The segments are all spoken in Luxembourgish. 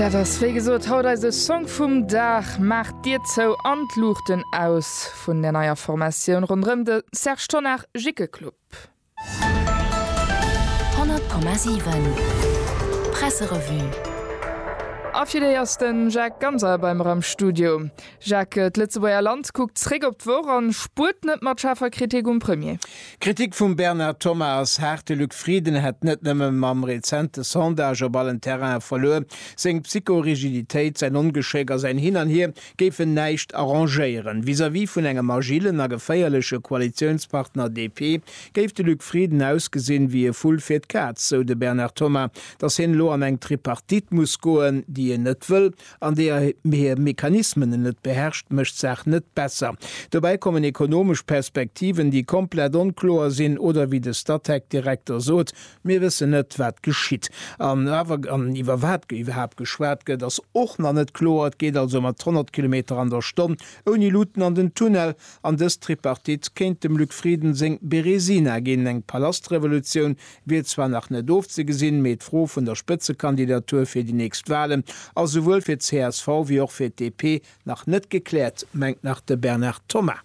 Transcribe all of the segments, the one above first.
Dat ass wéi gesot haut eise Song vum Dag. Maacht d'Dier zou an d'Luuchten aus vun der neier Formatioun ronderëm de Serge Tonnar, Jikke Club. 100,7 Presserevue. A fir déi ass den Jacques Ganser bei mer am Studio. Jacques, D'Lëtzebuerger Land kuckt zréck op d'Woch an spuert net mat schaarfer Kritik um Premier. D'Kritik vum Bernard Thomas ass haart, de Luc Frieden hätt net nëmme mam rezente Sondage op allen Terrainen verluer. Seng Psycho-Rigiditéit, säin Ongeschéck a säin Hin an Hier géifen näischt arrangéieren. Vis-à-vis vun engem agillen a geféierleche Koalitiounspartner DP géif de Luc Frieden ausgesinn wéi e Vull fir d'Kaz, sou de Bernard Thomas. Datt hien elo an eng Tripartite muss goen, déi en net wëll, an deeër hir Mechanismen en net beherrscht, mécht d'Saach net besser. Dobäi kommen ekonomesch Perspektiven, déi komplett onkloer sinn oder, wéi de Statec-Direkter sot, Mir wëssen net, wat geschitt. An awer, an iwwer wat iwwerhaapt geschwat gëtt, ass och nach net kloer. Et geet also mat 100 Kilometer an der Stonn ouni Luuten an den Tunnel. An dës Tripartite kéint dem Luc Frieden seng Berezina ginn, eng Palastrevolutioun, wier zwar nach net ofzegesinn, mee d'Fro vun der Spëtzekandidatur fir déi nächst Walen ass esouwuel fir csv wéi och fir d'DP nach net gekläert, mengt nach de Bernard Thomas.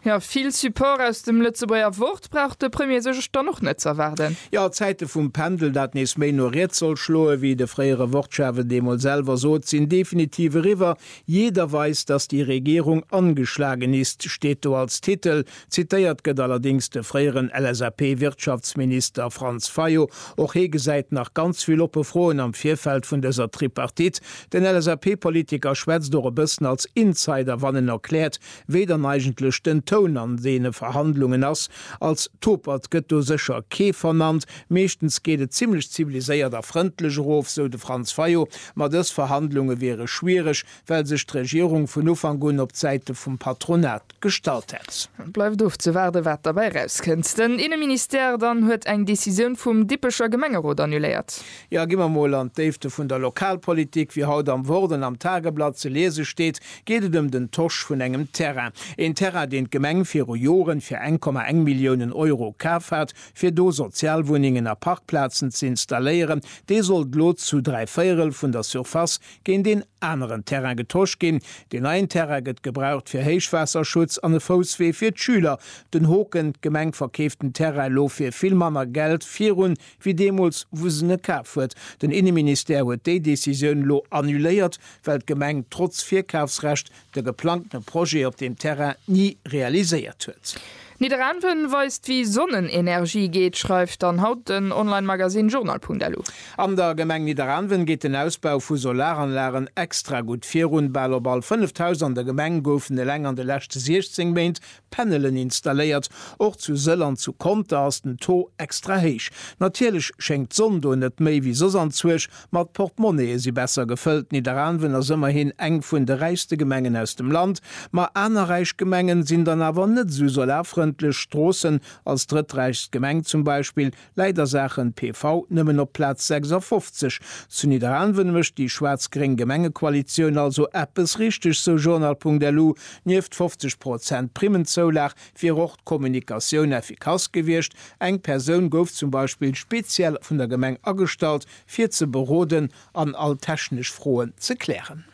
Jo, vill Support aus dem Lëtzebuerger Wort brauch de Premier sech dann och net z'erwaarden. Jo, a Zäite vum Pendel, dat nees méi no riets soll schloen, wéi de fréiere Wortchef et eemol selwer sot, sinn definitiv eriwwer. Jeder weiß, dass die Regierung angeschlagen ist, steet do als Titel. Zitéiert gëtt allerdéngs de fréieren LSAP-Wirtschaftsminister Franz Fayot. Och hee gesäit nach ganz vill oppe Froen am Virfeld vun dëser Tripartite. Den LSAP-Politiker schwätzt och e bëssen als Insider, wann en erkläert, wéi dann eigentlech den Toun an deene Verhandlungen ass. Als Topert gëtt do sécher kee vernannt. Meeschtens geet et zimmlech ziviliséiert a frëndlech erof, sou de Franz Fayot. Ma dës Verhandlunge wiere schwiereg, well sech d'Regierung vun Ufank un op d'Säite vum Patronat gestallt hätt. Et bleift ofzewaarden, wat derbäi erauskënnt. Den Inneministère dann huet eng Decisioun vum Dippecher Gemengerot annuléiert. Jo, gi mer mol an d'Déifte vun der Lokalpolitik. Wéi haut am Wort an am Tageblatt ze liese steet, geet et ëm den Tosch vun engem Terrain. Een Terrain, deen d'Gemeng viru Joren fir eng Komma eng Milliounen Euro kaf hat, fir do Sozialwunnengen a Parkplazen ze installéieren. Dee sollt lo zu dräi Véierel vun der Surface géint een aneren Terrain getosch ginn. Deen neien Terrain gëtt gebraucht fir Héichwaasserschutz an e Fousswee fir d'Schüler. Den Hoken, D'Gemeng verkeeft den Terrain elo fir vill manner Geld virun, wéi deemools, wou se en kaf huet. Den Inneministère huet déi Decisioun elo annuléiert, well d'Gemeng trotz Virkafsrecht de geplangte Projet op deem Terrain ni realiséiert huet. Nidderaanwen weist wéi Sonnenenergie geet, schreift dann haut den Online-Magasinn Journal.lu. An der Gemeng Nidderaanwen geet den Ausbau vu Solaranlagen extra gutt virun. Bal op all fënneft Haus an der Gemeng goufen eleng an de leschte 16 Méint Panelen installéiert. Och zu Sëll an zu Conter ass den Taux extra héich. Natierlech schéngt d'Sonn do net méi wéi soss an Zürch, ma d'Portemonnaie si besser gefëllt. Nidderaanwen ass ëmmerhin eng vun de räichste Gemengen aus dem Land, ma aner räich Gemengen sinn dann awer net esou solarfrëndlech. Stroossen als drëtträichst Gemeng zum Beispill Leider Saachen PV nëmmen op Platz 56. Zu Nidderaanwen mécht déi schwaarz-gréng Gemengekoalitioun also eppes richteg, sou Journal.lu. Nieft 50 Prozent Primmenzoulag wier och d'Kommunikatioun effikass gewiescht. Eng Persoun gouf zum Beispill speziell vun der Gemeng agestallt, fir ze beroden an all technesch Froen ze klären.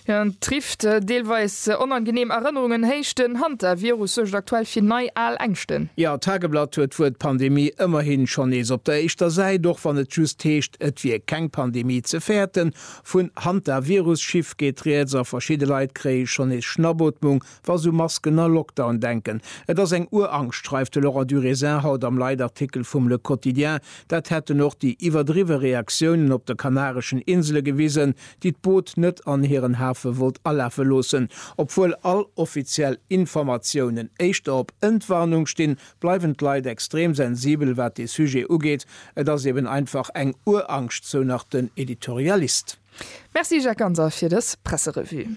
Jo, en trifft deelweis onangeneem Erënnerungen, héicht den Hantavirus suergt aktuell fir nei al Ängschten. Jo, d'Tageblatt huet d'Wuert Pandemie ëmmerhin schonn nees op der éischter Säit, och wann et just heescht, et wier keng Pandemie ze fäerten. Vun Hantavirus-Chiffre geet rieds a verschidde Leit kréie schonn nees Schnappotmung, Wa sou Masken a Lockdown denken, et ass eng Urangscht, schreift de Laurent Durésin haut am Leitartikel vum Le Quotidien. Dat hätten och déi iwwerdriwwe Reaktiounen op de kanareschen Insele gewisen, déi d'Boot net an hiren Hafe wollt alafe loossen. Obwuel all offiziell Informatiounen éischter op Entwarnung stinn, bleiwen d'Leit extrem sensibel wat dee Sujet ugeet. Et ass eben einfach eng Urangscht, sou nach den Editorialist. Merci Jacques Ganser fir dës Presserevue.